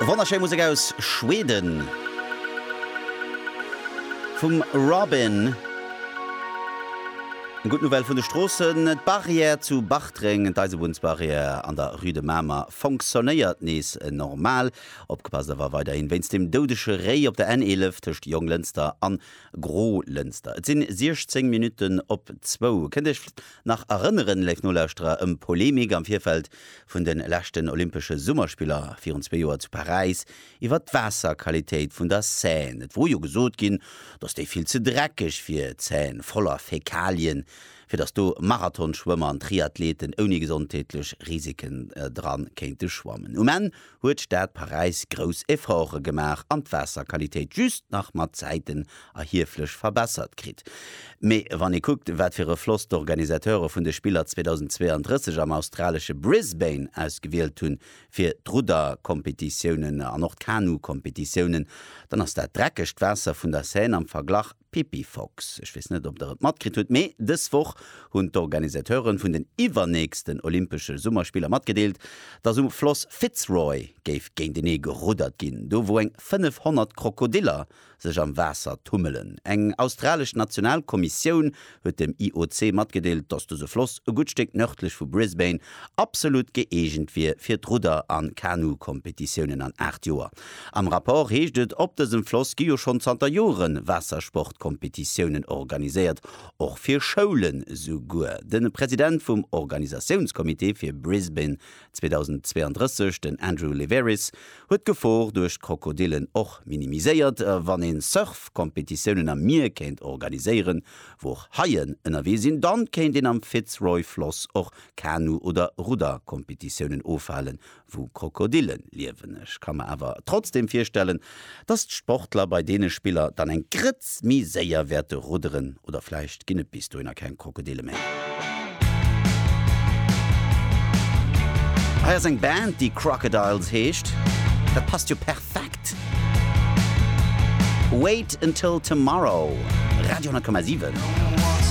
Wonnerschéi Musek aus Schweden vum Robyn. Gutt Nouvelle vun de Stroossen, D'Barrière zu Bartreng, d'Eisebunnsbarrière an der Rue de Mamer fonctionnéiert nees normal. Opgepasst awer weiderhi wéinst dem doudege Réi op der N11 tëscht Jonglënster an Grolënster. Et sinn 16 Minutten op zwou. Kënnt Iech Nach erënneren, léif Nolauschterer, ëm d'Polemik am Virfeld vun de leschten Olympesche Summerspiller virun zwee Joer zu Paräis iwwert d'Waasserqualitéit vun der Seine. Et wor jo gesot ginn, datt déi vill ze dreckeg wier, d'Seine voller Fäkalien, fir datt do Marathonschwëmmer an Triathleten ouni gesondheetlech Risiken dran kéinte schwammen. Um Enn huet d'Stad Paräis grouss Efforte gemaach an d'Waasserqualitéit just nach mat Zäiten erhieflech verbessert kritt. Mee wann ee kuckt, wat fir e Floss d'Organisateure vun de Spiller 2032 am australesche Brisbane ausgewielt hunn fir d'Rudderkompetitiounen an och d'Kanukompetitiounen, dann ass dat dreckegt Waasser vun der Seine am Verglach Pippi Fox, Ech weess net, ob Der et matkritt hutt, mee dës Woch hunn d'Organisateure vun den iwwernächsten Olympesche Summerspiller matgedeelt, dass um Floss Fitzroy géif géintenee geruddert ginn, do wou eng 500 Krokodiller sech am Waasser tummelen. Eng australesch Nationalkommissioun huet dem IOC matgedeelt, dass dëse Floss e gutt Stéck nërdlech vu Brisbane absolut gëeegent wier fir d'Rudder a Kanu-Kompetitiounen an aacht Joer. Am Rapport heescht et, op dësem Floss gi jo schonn zanter Jore Waassersport-Kompetitiounen organiséiert, och fir Schoulen. Souguer de President vum Organisatiounscomité fir Brisbane 2032, Den Andrew Liveris huet d'Gefor duerch d'Krokodillen och minimiséiert, Wann een Surf-Kompetitiounen am Mier kéint organiséieren, wou och Haien ënnerwee sinn, dann kéint een am Fitzroy-Floss och Kanu oder Rudder-Kompetitiounen ofhalen, wou Krokodillen liewen. Ech ka mer awer trotzdem virstellen, Dass d'Sportler bei deene Spiller dann eng Grëtz méi séier wäerte rudderen. Oder vläicht ginn et bis dohinner keng Krokodille méi. Hei ass eng Band, déi Crocodiles heescht. Dat passt jo perfekt. Wait Until Tomorrow, Radio 10,7.